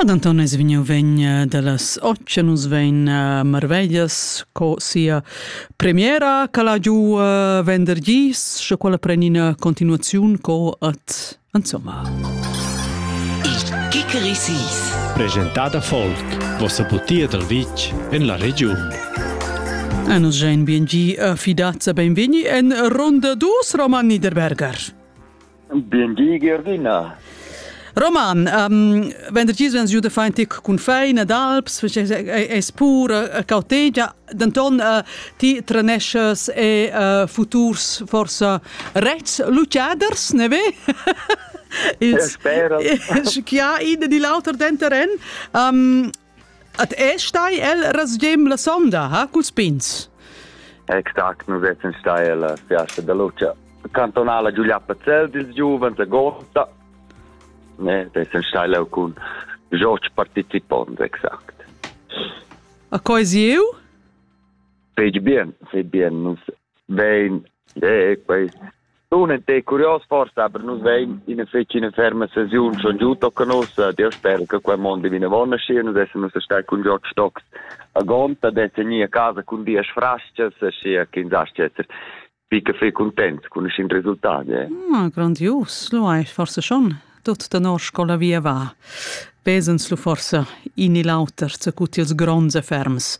Ad Anton es vegniu vegn eh, dallas otg nus vegn eh, marveglias co sia premiera che la giu eh, vendergis sche quella preni una continuazione co at insomma Il Kikerisis Presentada Folk vossa butia dal vitg en la regiun A nus gein bien gi fidazza benvegni en ronda dus Roman Niederberger. Bindi Gerdina. Roman, um, vendergis vens giu da far in tic cun fein ed alps, es pur uh, cautegia, denton uh, ti treneschas e uh, futurs forsa rets lucaders, ne ve? Il, Spera. chi ha in di l'auter denteren. Um, At è stai el rasgem la sonda, ha, culs pins? Exact, nus essan stai alla fiasta da luce cantonala Giulietta Zell dils giuvens a Gorta. Ne, essan stai leu cun George participond, exact. A coi sieu? Fetg bien, fetg bien. Nus vein, eh, quei Dunque è curios forsa per nus vein ina fetg ina ferma sesiun schon giu tocca nos Dio spera che quel mondo viene buona scia nus essen uns stai cun George Stocks a gonta de segni a casa cun dies frasches scia che in zascher pica fe content con scin risultati eh? ah, grandios lo hai forse schon tut da nor scola via va pesens lu forse in il auter zu cuti els gronds e ferms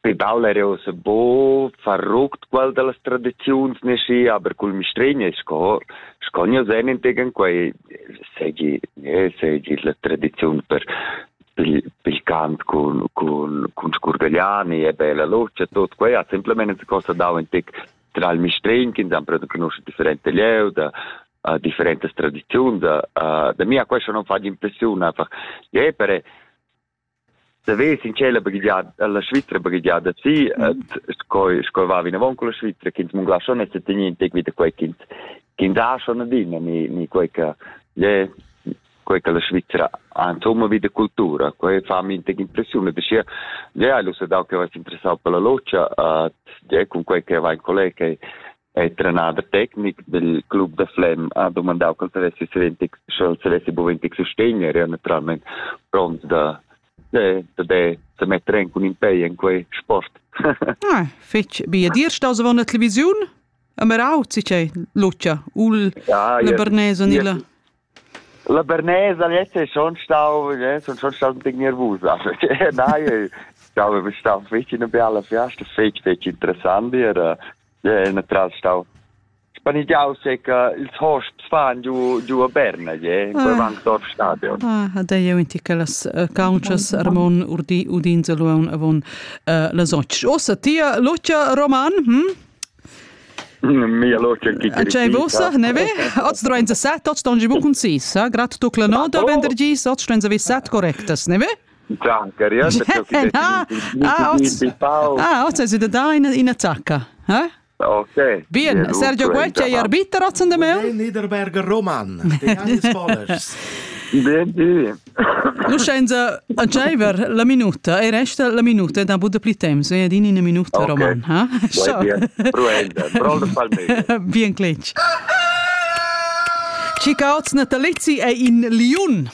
Pe baul era ussa bo farruct qual dallas tradiziuns nesci, aber cul mistregna sco sco nia sen integen quei segi eh, segi la tradiziun per pil, pil cant cun cun cun scurgagliani e bella luce tot quei ha simplemente cosa dau in tec tra il mistregn che hanno preso conosciuto differenti lieu da uh, differentes tradizioni da, uh, da mia questo non fa impressione fa, yeah, per Saves in tschella baghegiada, alla Svizra baghegiada si, et sco sco va vinavon con la Svizra, ch'ins mungla schon e tenir in tec vita quei ch'ins ch'ins ha schon adina, ni ni quei che je quei che la Svizra ha insomma vita cultura, quei fa mi tec impressione, perché je hai lu dau che va interessau per la logia, et je con quei che va in collega è trenader tecnic del club da Flem ha domandau col savessi savessi sch'el savessi buventig sostegner e naturalmein pront da de, da de se metter en cun in pei en quei sport. ah, fitch bia dir staus avon la televisiun? Amerau, si che Lucia, ul ja, le Bernese nilla. La bernesa lezza ei schon stau, sun schon stau ein pign nervusa. Nein, jau stau fetg ina biala fiasta, fetg fetg interessant ir. È natural stau spanigiau se che ils hosps fan giu giu a Berna, je, in quel Wankdorf stadion. Ah, ha da jeu enti che las countschas Ramon urdi udin zaluon avon las 8. Ossa tia Lucia Roman, hm? Tgei vossa, ne ve? Oz duein set, oz ston gi bucun sis, eh? Grad tu la nota vendergi, oz duein vi set correctas, ne ve? Ah, oz es ida da in attacca, eh? Okay. Bien, Sergio Guecci hai arbiter ozen de meu? Niederberger Roman, de Johannes Bollers. Bien, Lucenza, aceiver la minuta e resta la minuta da buda pli temps, e adin ina minuta okay. roman, ha? bien, Bruenda, Brol de Palmeiras. bien cletg. Cicauts natalizzi è in Liun.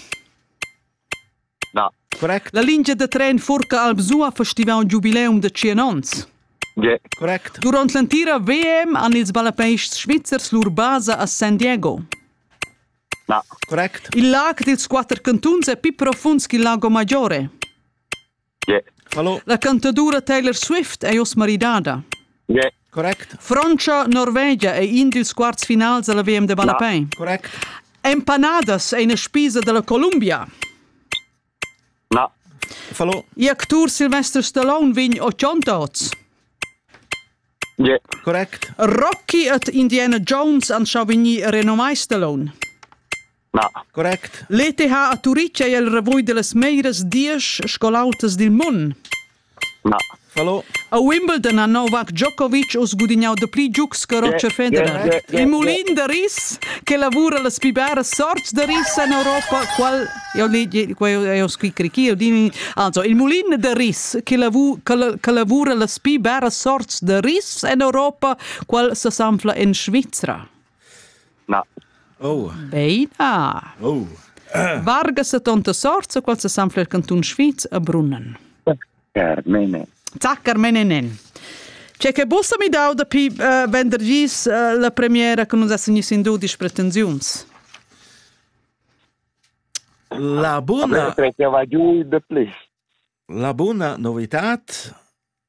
No. Correct. La lingia da tren Furca Albsua festiva un giubileum da 100 ans. Yeah. Correct. Durant l'entira VM han ils ballapeists svizzers lur basa a San Diego. Il lag dils quater cantuns è pli profunds ch'il Lago Maggiore. La cantadura Taylor Swift è oz maridada. Frontscha Norvegia è in dils quarts finals dalla VM da ballapei. Empanadas è ina spisa dalla Columbia. Na. Il actur Sylvester Stallone vegn otg oz. Yeah. Correct. Rocky ed Indiana Jones han schon vegnì renomai Stallone. Na. Correct. L'ETH a Turitg è il revue delle meglieres diesch scolautas dil mund. A Wimbledon ha Novak Djokovic uss gudignau dapli giugs che Roger Federer. Il mulin da ris che lavura las pli biaras sorts da ris en Europa, qual jau legi, qual jau scri crici, jau dini, also il mulin da ris che, lavu, che lavura las pli biaras sorts da ris en Europa, qual sesanfla en Svizra. Na. Oh. Beina. Oh. Varga sa tonta sorts, qual sa sanfler cantun Schwyz a Brunnen. Carmene. Tac, Carmenenen. C'è che bossa mi dau da pi uh, vendergis uh, la premiera che non ha signis in du di pretensiuns? La bona... La bona novità